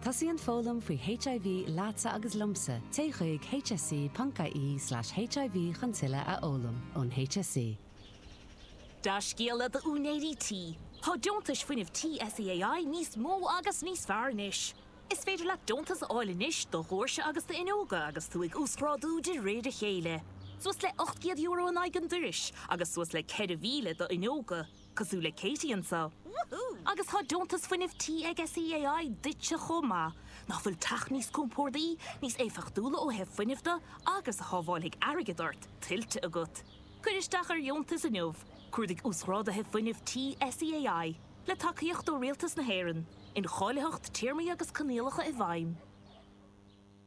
Tosaíonn foghlaim faoi HIV leatsa agus liomsa, téigh chuig hse.ie slash hiv chun tuilleadh a fhoghlaim. Ón hse. Dea-scéala d'úinéirí tí, tá deontais fuinnimh tí SEAI níos mó agus níos fearr anois! Is féidir leat deontas a fháil anois do dhóirse agus d'fhuinneoga agus tú ag uasghrádú de réir a chéile. Suas le €800 in aghaidh an doiris agus suas le 4,000 do fhuinneoga. cosúil le Katie anseo. Agus tá deontas fuinnimh tí ag SEAI duitse chomh maith. Nach bhfuil teach níos compórdaí, níos éifeachtúla ó thaobh fuinnimh de agus a shábháilfidh airgead ort, tuillte agat? Cuir isteach ar dheontas inniu, cuardaigh Uasghrádaithe Fuinnimh Tí SEAI, le tacaíocht ó Rialtas na hÉireann, Incháilitheacht, Téarmaí agus Coinníollacha i bhfeidhm.